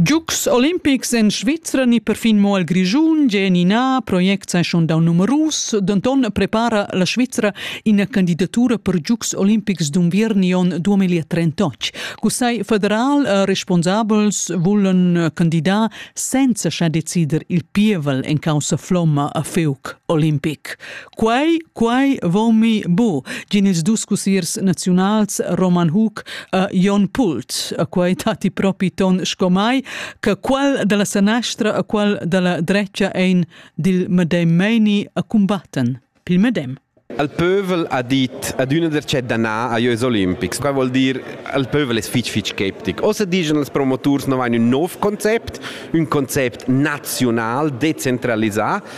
Giugs olimpics en Svizra ni perfin mo al Grischun gen ina project sesiun dau numerus, denton prepara la Svizra ina candidatura per Giugs olimpics d'unviern on 2038. Cussai federal e responsabels vulan candidar senza scha decider il pievel en causa flomma a Feuc olimpic. Quai, quai vomi bu, gin ils dus cusiers naziunals Roman Hug a Jon Pult, a quai tati propi ton sco mai, che qual della sanastra a qual della drecia ein dil medem meini a combatten, pil medem. Al pövel ha dit ad üna der chat danà a jös olimpics, qua vuol dir al pövel es fich fich skeptic. Ossa digen als promoturs no vain ün nov concept, ün concept naziunal, dezentralisà,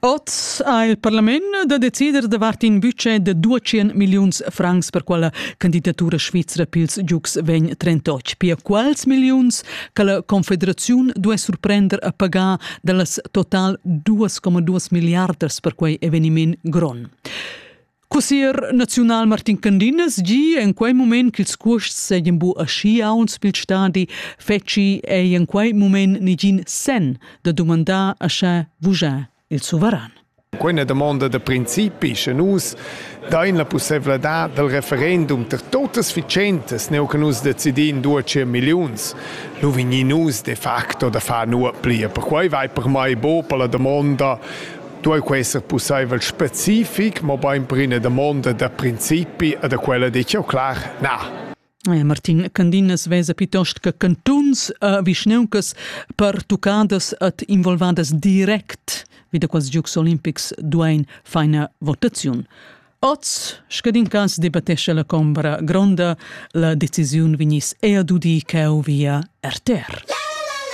Oz ha il parlament da decider davart in budget da 200 milliuns francs per quella candidatura svizra pils giugs vegn 38. Pia quals milliuns che la Confederaziun duai surprender a pagar dallas total 2,2 milliardas per quei eveniment gron. Cussier naziunal Martin Candinas gi en quei moment ch'ils cuosts seigien bu aschi aunc pil stadi fetschi ei en quei moment negin sen da dumandar a sche vugia il suveran. Quella domanda da principi sche nus dain la possibilità dal referendum per totas vicentas neu che nus decidin due cien milliuns nu vigni nus de facto da far nuo plia per quei vai per mai bo per la domanda duei quei esser pusseivel specific, mobein per ina damonda da principi e da quella detg jau clar, na. Eh, Martin Candinas vesa piuttost che cantuns e vischneuncas pertuccadas et involvadas direct wie da quels Giugs Olimpics duein feina votaziun. Oz, scadin cas debattesce la Combra Gronda, la decisiun vignis ea dudi cheu via RTR.